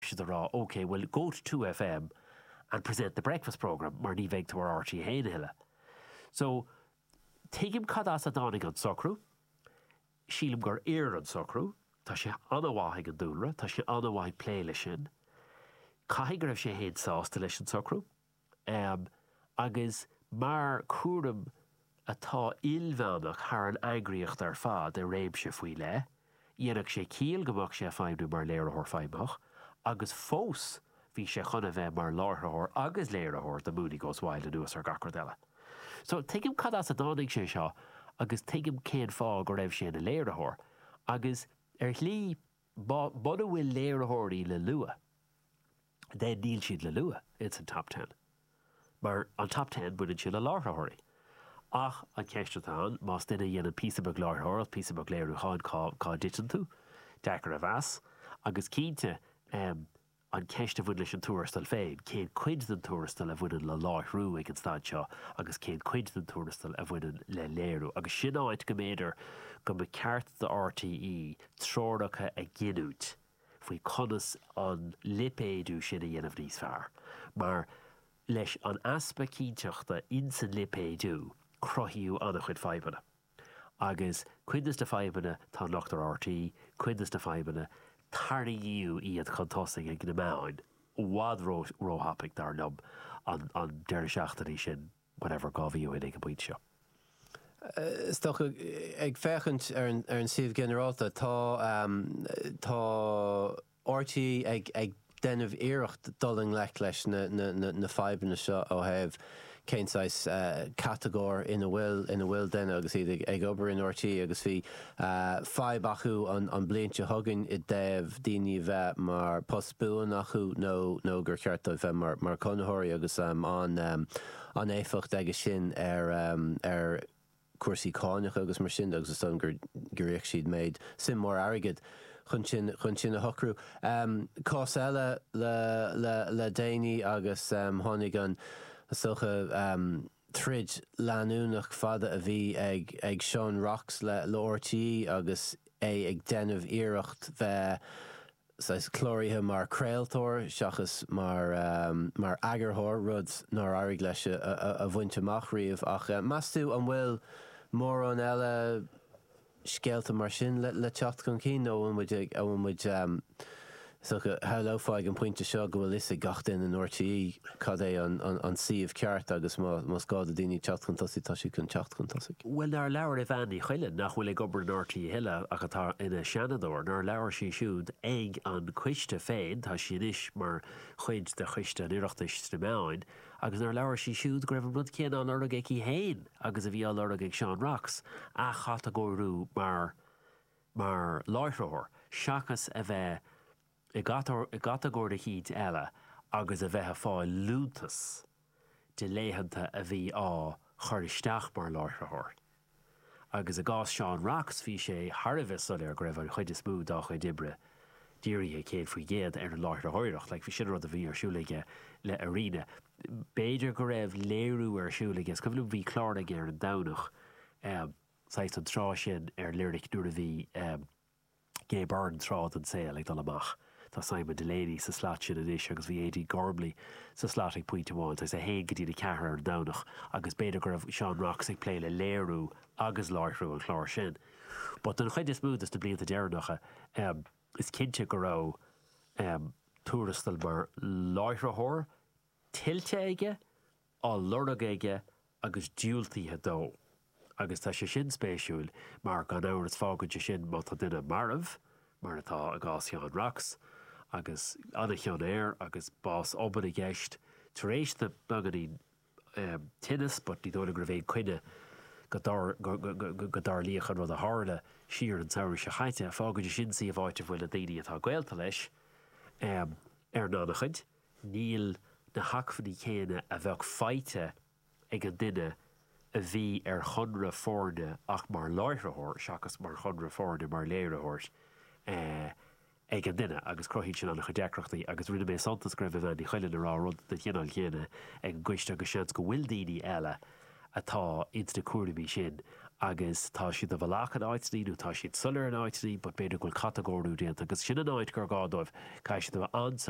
siad a rá OK bhuel go to 2FM and present the breakfast programme mar ní bheidh tú ar RTÉ 1 a thuilleadh. So tuigim cad as a dtáinig an socrú, sílim gur oir an socrú, tá sé an-mhaith ag an dúlra, tá sé an-mhaith ag plé leis sin. Caithfidh go raibh sé fhéin sásta leis an socrú. ann agus mar chúram atá ilmheánach thar an eagraíocht ar fad i réimse faoi leith, dhéanfadh sé ciall go mbeadh sé ag feidhmniú mar Léiritheoir Feidhmitheach agus fós bhí sé chun a bheith mar láithreoir agus léiritheoir do Mooney Goes Wild anuas ar gach rud eile. So tuigim cad as a dtáinig sé seo agus tuigim cén fáth go raibh sé ina léiritheoir agus ar shlí muna bhfuil léiritheoirí le lua, 10 níl siad le lua ins an Top Ten, mar an Top Ten baineann sé le láithreoirí. Ach an cheist atá ann, más duine a dhéanann píosa beag láithreoireacht, píosa beag léiriúcháin, cá, cá dtiteann tú? Deacair a mheas. Agus cinnte, em, an cheist a bhain leis an tuarastal féin, cén cuid den tuarastal a bhaineann le láithriú ag an staid seo agus cén cuid den tuarastal a bhaineann le léiriú? Agus sin áit go mb'fhéidir go mba cheart do RTÉ treoracha a ghiniúint, faoi conas an lipéadú sin a dhéanamh níos fearr, mar leis an easpa cinnteachta ins an lipéadú, cruthaíodh an-chuid fadhbanna. Agus cuid de sna fadhbanna tá locht ar RTÉ, cuid de sna fadhbanna, tarraingíodh iad chun tosaigh ag na meáin, i bhfad ró-thapaidh, dar liom, an deireadh seachtaine sin. whatever dhá mhí go dtí an pointe seo. Is dócha, ag féachaint ar an suíomh ginearálta, tá RTÉ ag déanamh iarracht dul i ngleic leis na fadhbanna seo ó thaobh cén saghas catagóir ina bhfuil, ina bhfuil duine agus iad ag obair in RTÉ agus bhí fadhb acu le blianta, tuigim, i dtaobh daoine a bheith mar post buan acu nó gur cheart dóibh bheith mar conraitheoirí agus an éifeacht aige sin ar chúrsaí cánach agus mar sin de agus is dóigh liom gur íoc siad méid, suim mhór airgid chun sin a shocrú. Cás eile le déanaí agus tháinig an, is dócha. troid leanúnach fada a bhí ag Seán Rocks le RTÉ agus é ag déanamh iarracht bheith saghas cláraithe mar chraoltóir seachas mar eagarthóir, rud nár éirigh leis a bhaint amach riamh. Ach meas tú an bhfuil mórán eile. scéalta mar sin le teacht chun cinn nó an bhfuil muid, an bhfuil muid, is dócha, shamhlófá ag an bpointe seo go bhfuil a fhios ag gach duine in RTÉ cad é an, an, an suíomh ceart agus má, más gá do daoine teacht chun tosaigh tá siad chun teacht chun tosaigh. Bhuel nár labhair Evanne Ní Chuilinn, nach bhfuil ag obair in RTÉ a thuilleadh ach atá ina Seanadóir, nár labhair sí siúd ag an coiste féin, tá sí anois mar chuid de choiste an Oireachtais sna meáin, agus nár labhair sí siúd go raibh an rud céanna á lorg aici féin agus a bhí á lorg ag Seán Rocks, athchatagóiriú mar mar láithreoir seachas a bheith i gcatagóir eicínt eile agus a bheith ag fáil liúntas de laethanta a bhí á chur isteach mar láithreoir. agus i gcás Seán Rocks bhí sé thar a bheith soiléir go raibh an chuid is mó dá chuid oibre dírithe céad faoin gcéad ar an láithreoireacht, like b'in an rud a bhí ar siúl aige le Arena. B'fhéidir go raibh léiriú ar siúl aige, is cuimhin liom bhí clár aige ar an Domhnach, saghas an tráth sin ar Lyric nuair a bhí, Gay Byrne tráth den tsaol ag dul amach. Tá Simon Delaney sa slat sin anois agus bhí Aedín Gormley sa slat ag pointe amháin agus a haon go dtína ceathair ar an Domhnach agus b'fhéidir go raibh Seán Rocks ag plé le léiriú agus láithriú an chláir sin but don chuid is mó de sna blianta deireanacha is cinnte go raibh tuarastal mar láithritheoir tuillte aige. á lorg aige agus diúltaithe dó, agus tá sé sin spéisiúil mar, gan amhras, fágann sé sin, má tá duine marbh, mar atá i gcás Sheáin Rocks, agus an-chion air agus bás obann i gceist, tar éis dó beagáinín tinneas but ní dóigh liom go raibh aon coinne go dtarlódh an rud a tharla siar an samhradh seo caite, fágann sé sin suíomh áit a bhfuil na daoine atá gaolta leis ar an an-chuid. níl na hacmhainní céanna a bheadh faighte ag an duine a bhí ar chonradh foirne ach mar láithritheoir seachas mar chonradh foirne mar léiritheoir ag an duine agus cruthaíonn sin an-chuid deacrachtaí agus rinne mé suntas go raibh Evanne Ní Chuilinn ag rá rud den chineál chéanna ag an gcoiste agus seans go bhfuil daoine eile atá ins na cúraimí sin agus tá siad i bhfalach in áiteannaí nó tá siad soiléir in áiteannaí but b'fhéidir go bhfuil catagóiriú déanta agus sin an áit gur gá dóibh, caithfidh siad a bheith an-soiléir.